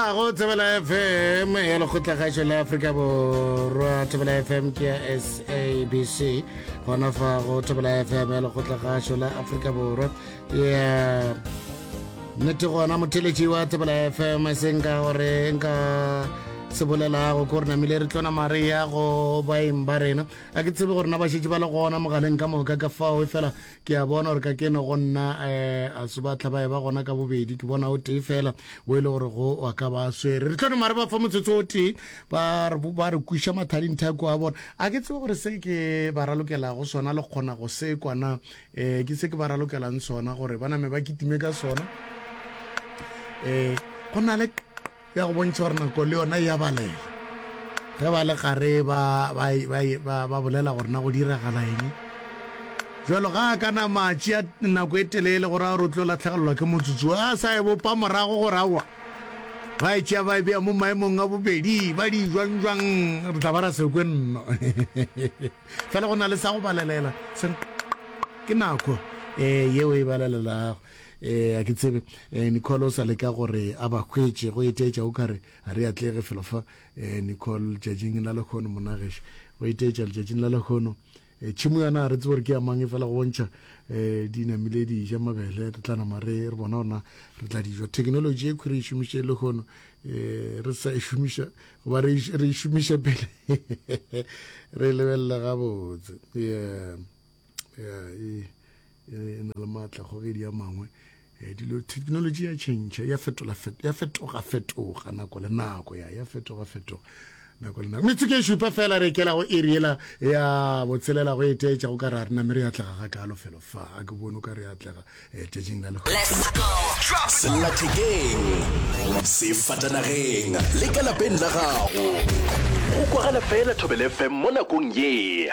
a go tsebela fm ya lekgotlagašo la afrika borwa tsebela fm ke ya sabc gona fa go tsebela fm ya lekgotlagašo la afrika borwa ya nnete gona motheletši wa tsebela fm e seng ka gore nka se bolelago ko re namile re tlona mare ya go baeng ba rena a ke tsebe gore na ba šetse ba le gona mogaleng ka moka ka fao e fela ke a bona gore ka keno go nna um a se ba tlhabae ba gona ka bobedi ke bona o tee fela o e le gore go wa ka ba swere re tlhano mare ba fa motsotso o tee ba re kwiša mathading thako a bona a ke tsebe gore se ke ba ralokelago sona le kgona go se kwana um eh, ke se ke ba ralokelang sona gore ba name ba kitime ka sona um eh, go na le ya go bontšha gore nako le yona e a balega ge ba le gare ba ba ba ba ba bolela gore na go diragala eng jalo ga a kana matši a nako e telele gore a re o tlo latlhegelelwa ke motsotso a sa e bopa morago gore awa ba e tšea ba e beya mo maemong a bobedi ba di jwang jwang re tla ba ra sekwe nno fela go na le sa go balelela se ke nako um yeo e balelelago Eh, a ke tsebe eh, Nicole o sa leka gore a ba hwetše go eteetša o kare a re atlege felo fa eh, Nicole tšatšing la lekgono monageše go eteetša letšatšing la lekgono eh, tšhimo yana a re tsebo gore ke ya mang e fela go bontšha eh, di namile di ja mabele re tla nama re re bona gona re tla dijo thekenoloji e khwi re e šomiše lekgono eh, re sa e šomiša goba re e- re e šomiše pele re e lebelela gabotse yeah. ya e, e, e na le maatla kgogedi ya mangwe eh, dilo technology ya change ya fetola ya fetoga fetoga nako le nako ya ya fetoga fetoga nako le nako metsotso e šupa fela re kela go iri yela ya botshelela go eteetša go ka re a rena mme re atlega ga kalo felo fa a ke bone o ka re atlega eh, tšatšing la legosellathekeng sefatanageng le ka lapeng la gago go kwagala fela thobele fm mo nakong ye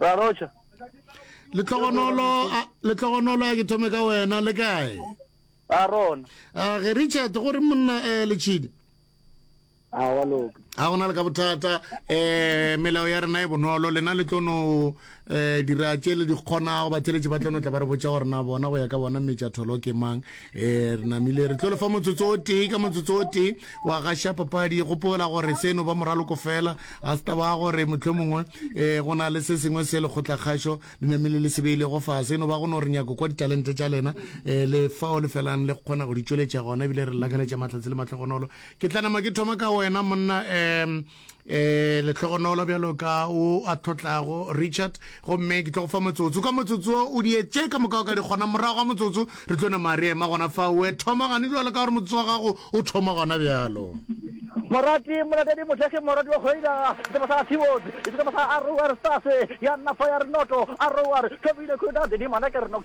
ra rocha letlogonolo letlogonolo ya ke thome ka wena le kae a rona a ge richard go re monna um eh, letšhidi a wa loka a gona le ka bothata um melao ya rena e bonolo lena le tlono um eh, dira tše le di kgonago batheletši ba tlono tla ba re botsa gore na bona go ya ka bona metša tholo ke mang ee re namile re tlo lefa motsotso o tee ka motsotso o tee wa gaša papadi gopola gore seno ba moraloko fela a se taba gore motlho mongwe um go na le se sengwe se lekgotlakgašo le namile le sebeile go fa seno ba go no re nyako kwa ditalente tša lena um le fao le felang le kgona go di tšweletša gona ebile re lakaletša matlhatsi le matlhogonolo ke tla nama ke thoma ka wena monna um eh lehlogonolo bjalo ka o a thotlago richard gomme ke tlo go fa motsotso ka motsotso o dietše ka moka o ka di kgona morago ga motsotso re tlo nama re ema gona fa oe thoma gane jalo ka gore motsotso wa gago o thoma gona bjalo morati molatedi mothekgi morati wa kgwedi seba sa tiwod e seba sa arowar stase ya nna fa ya re noto arowar thobile khudade di mana ke re nok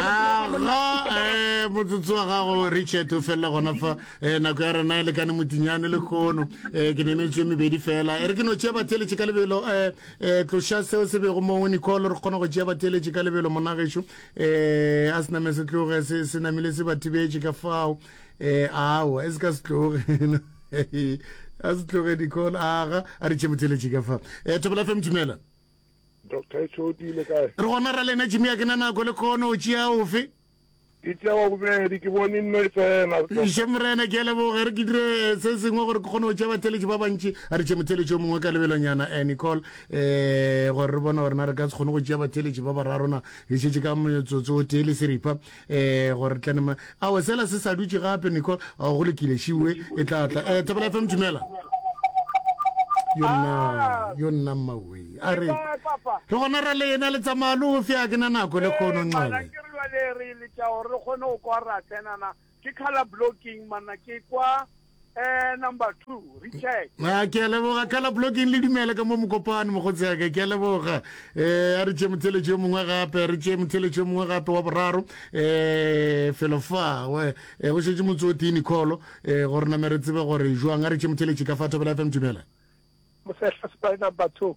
aga motsotso wa gago richard o felela gona fa um nako ya rena e lekane motinyane le kgono um ke nenetswe mebedi fela e re ke no tšea batheeletše ka lebelo um um tloša seo se bego mo nicole re kgona go tšea batheeletše ka lebelo monagešo um a se name se tloge se namile se ba thibetše ka fao um ao e se ka se tloge a se tloge nicole aga a re tšhe motheeletše ka fao um thobela fe mthumela Doctor e tšhoti le kae? Re gona ra lena Jimmy a ke na nako le kono o tšea ofe? Ke tšea wa bobedi ke bone nno e tsena. Ešo Morena ke a leboga e re ke dire se sengwe gore ke kgone go tšea batheletši ba bantši. A re tšee motheletši o mongwe ka lebelonyana eh Nicole eh gore re bone gore na re ka se kgone go tšea batheletši ba bararo na. Re šetše ka motsotso o tee le seripa Ee, gore tlane ma. Awe, sela se sa dutše gape, Nicole. Ao, go lokile, šiwe e tla tla. Eh, Thapelo FM, dumela. Yo nna, yo nna mmawe. A re, Ke kae, papa? le gona ra le ena le tsamaya lo fe a ke na nako le kgono Eh, mana nxabe. ke re bjale re letša gore re kgone go kwa ra tsenana ke color blocking mana ke kwa Eh, number two recheck a ke a leboga ka la blocking le dumele ka mo mokopane mokgotsi yake ke a leboga um a re tšee motheletšo yo mongwe gape re tšee motheletšo yo mongwe gape wa boraro um felo fa go eh, šetse motse o tee nicolo um eh, gore name re tsebe gore jwang a re tšee motheletši ka fa thobela fm dumela mosehla sepai number two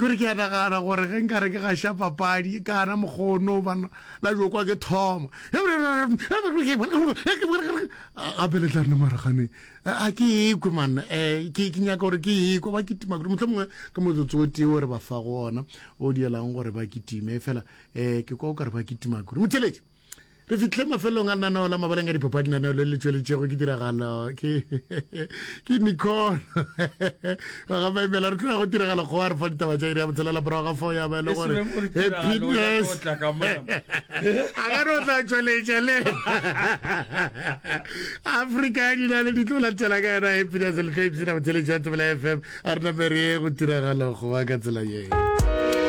kore ke a nagana gore ge nka re ke gaša papadi ka ana mokgono bana la jo kwa ke thoma gape le tla nna maragane a ke ekwe manna um ke nyaka gore ke ekwe ba kitima kore motlho mongwe ke motsotso o tee o re ba fa go ona o dielang gore ba kitime fela um ke kwa o kare ba kitima kore motheletše re fitlhe mafelong a nanao la mabaleng a dipapadi nanao le le tšweletšego ke tiragalo ke ke nicol ga maimela re tloya go tiragalo go a re fa ditaba tša iri ya botshelela morago ga fao ya ba e le gore happiness a ka re o tla tšweletša le afrika ya dina le ditlo latela ka yona happiness le tlo ipsena botšweletši wa tebela fm a re namere ye go tiragalo go ba ka tsela yeo